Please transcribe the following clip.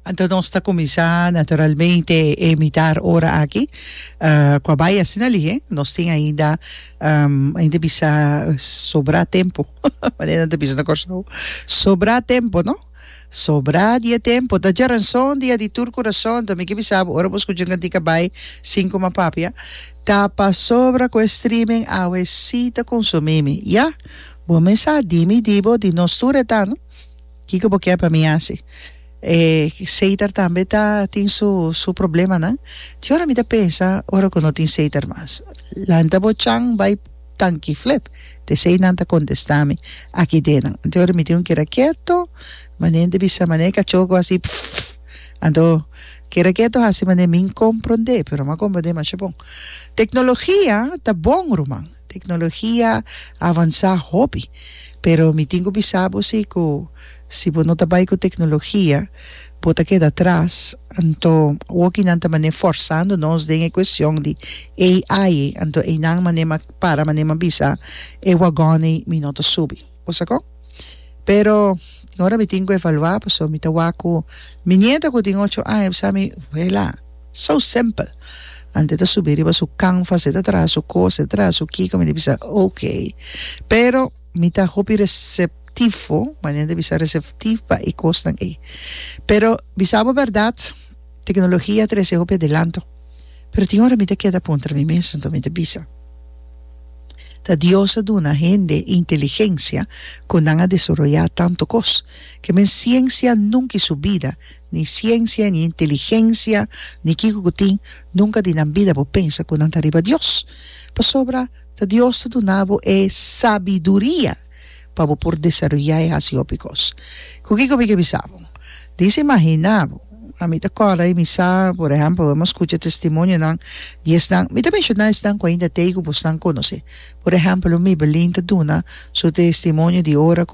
Anto nos ta kuminsá naturalmente e mitar ora aki ku a bai asina lihe. Nos tin ainda ainda bisa sobrá tempu manera nan ta bisa na Kòrsou sobrá tempu no sobrá di e tempu ta dje rason di a di tur kurason ta mi ke bisa bo ora bo skucha un kantik a bai sin kuma papia ta pasobra ku e streaming awe si ta konsumí mi ya bo mes sa di mi di bo di nos tur e ta no. Kiko bo ke pa mi hasi? E seiter tambe ta tin su su problemanan. Tin ora mi ta pensa ora ku no tin seiter mas. Lanta bo chan bai tanki flep, t'esei nan ta kontestá mi aki denan. Anto ora mi tin un keda keto, manente bisa mané kachó ku hasi pfff. Anto keda keto hasi mané min komprondé, pero mi a komprondé masha bon. Teknologia ta bon ruman. Tecnologia a avansa hopi, pero mi tin cu bisa bo si cu si bo no ta bay cu tecnologia bo ta keda atras, anto wokinan ta mane forzando nos den e cuestion di AI, anto eynan mane ma para, mane ma bisa e wagoney mi no ta subi. Osakon. Pero mi ora mi tin ku evaluá paso mi ta wak ku mi nieta ku tin ocho aña bisa mi, Wela, so simpel. Ante ta subi riba su kanfa se ta traha su kos, e traha su kiko, mi di bisa, ok. Pero mi ta hopi reseptivo, manera di bisa reseptivo pa e kosnan ei. Pero bisa bo bèrdat, teknologia a trese hopi adelanto. Pero tin ora mi ta keda puntra mi mes anto mi ta bisa, Ta Dios a duna hende inteligensia ku nan a desoroyá tantu kos? Ke men siensia nunka i su bida, ni siensia, ni inteligensia, ni kiko ku tin, nunka di nan bida bo pensa ku nan ta riba Dios. Pasobra ta Dios ta duna bo e sabiduria. pa bo por desaroyá e hasi hopi kos. Ku kiko mi ke bisa bo? Disa imaginá bo. Ami ta kòrda i mi sa, por ehèmpel, bo hemos skucha testimonionan di esnan, mi ta menshoná esnan ku ainda t'ei ku bosnan konosé. Por ehèmpel, un Mibelin ta duna su testimonio di ora ku